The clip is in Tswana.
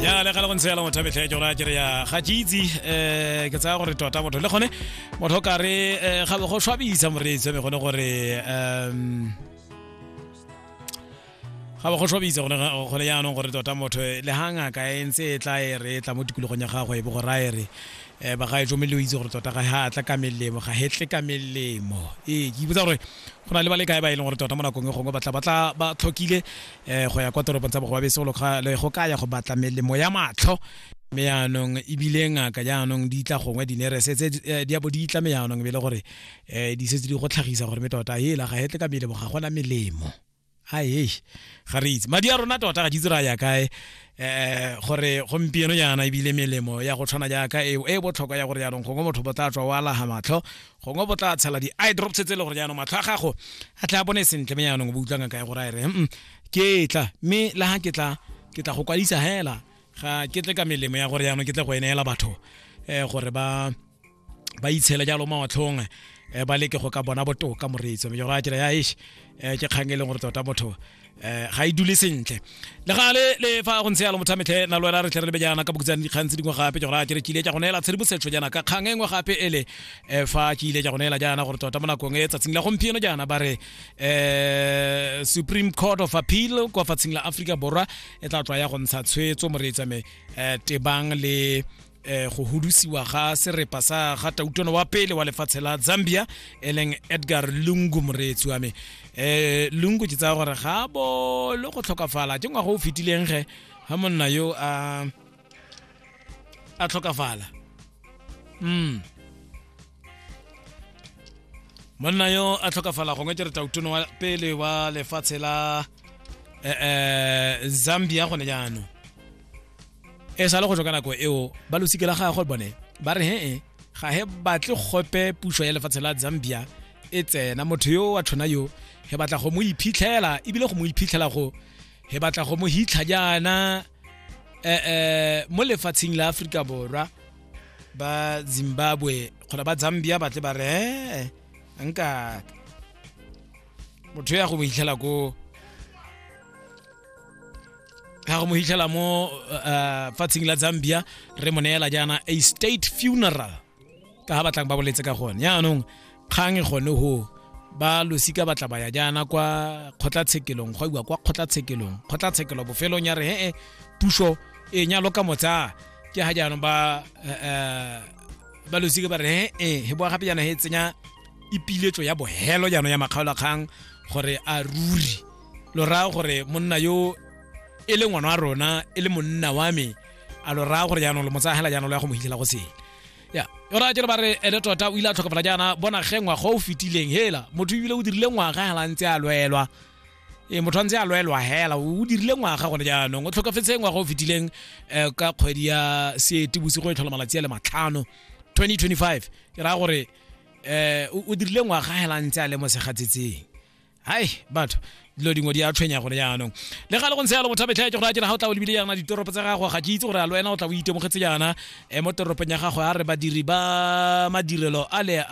ya le gale go ntse yala motho a metlha ya jona kere ya ga jeitsi um ke tsaya gore tota motho le gone motho ka re eh, ga go swabisa moreetsi wa me gone gore um ga ba go swabisa gone ga- gone yaanong gore tota motho le ga ngaka e ntse e tla e re e tla mo tikologong ya gagwe e bo gore a e re um ba ga e tsomme le o itse gore tota ga ga a tla ka melemo ga he tle ka melemo ee ke ipotsa gore go na le ba le kae ba e leng gore tota mo nakong e gongwe batla batla ba tlhokile um go ya kwa toropong tsa bogobabese go go ka ya go batla melemo ya matlho mme yaanong ebile ngaka jaanong di tla gongwe dinerese tse eh, di abo di itlame yaanong be le gore um di setse di go tlhagisa gore me tota hela ga hetle ka melemo ga gona melemo ae ga re itse madi a rona tota ga ditse ra ya kae eh gore gompieno jaana ebile melemo ya go tshwana jaaka eo e botlhokwa ya gore jaanong gongwe motho bo tla tswa o alaga matlho gongwe bo tla tshela di-eye drops tse e le gore jaanong matlho a gago a tla bone sentle me jaanong bo utlwang ka ya gore a re mm, ke tla mme la ga ke tla ke tla go kwadisa hela ga ke tle ka melemo ya gore jaanong ke tle go e neela batho um gore ba ba itshele jalo mawatlhong um ba leke go ka bona botoka moreetso mme jora tsela ya ish um ke kgang e leng gore tota motho eh ga e dule sentle le ga le le fa go ntse ya lo mothametlhe na lo ela re tle re lebe jaana ka bokutsane dikgang tse dingwe gape ke gore a kere ke ile tsa go neela tshedimosetso jaana ka kgang e nngwe gape ele eh fa ke ile tsa go neela jaana gore tota mo nakong e tsatsing la gompieno jaana ba re eh Supreme Court of Appeal kwa fatsheng la Africa Borwa e tla tswa ya go ntsha tshwetso moreetsa me eh tebang le eh go hudusiwa ga serepa sa ga tautono wa pele wa lefatshe la Zambia eleng Edgar Lungu moreetsi wa me eh Lungu ke tsaya gore ga bo le go tlhokafala ke ngwago o fetileng ge ha monna yo a a tlhokafala mm monna yo a tlhokafala gongwe ke re tautono wa pele wa lefatshe la eh, eh, zambia gone jaanong e sa le go tswa ka nako eo ba losike la gagwe bone ba re he ga he batle gope puso ya lefatshe la zambia e tsena motho yo wa tshwana yo he batla go mo iphitlhela ebile go mo iphitlhela go he batla go mo hitlha jaana eh, eh, mo lefatsheng la aforika borwa ba zimbabwe kgona ba zambia batle ba re ee nka motho ya go mo hitlhela ko ga go mo hitlhela mo uh, fatsheng la zambia re mo neela jaana a state funeral ka ga batlang ba boletse ka gone yaanong kgang e gone go ba losika ba tla ba ya jaana kwa kgotlatshekelong go iwa kwa kgotlatshekelong kgotlatshekelo bofelong ya re he e puso e nyalo ka motsa ke ga jaanong ba eh, eh, ba losika ba re he e he boa gape jaana he tsenya ipiletso ya bohelo jaanong ya makgaolakgang gore a ruri lo raya gore monna yo e le ngwana wa rona e le monna wa me a lo raya gore jaanong lo mo tsaya hela jaanong lo ya go mo hitlhela go sele ya yona a kere ba re ene tota o ile a tlhokofala jaana bona ge ngwaga o fetileng hela motho ebile o dirile ngwaga hela ntse a lwelwa e motho a ntse a lwelwa hela o dirile ngwaga gone jaanong o tlhokafetse ngwaga o fetileng um ka kgwedi ya seete bosigo e tlhola malatsi a le matlhano 2025 ke raya gore um o dirile ngwaga hela ntse a le mo segatsetseng hai batho dilo dingwe di a tshwenya gone jaanong le ga le go ntse yalo motho a betlhaetse gore a jena ga o tla o lebile yana ditoropo tsa gago ga ke itse gore a le wena o tla o itemogetse yana um mo toropong ya gago a re badiri ba madirelo a le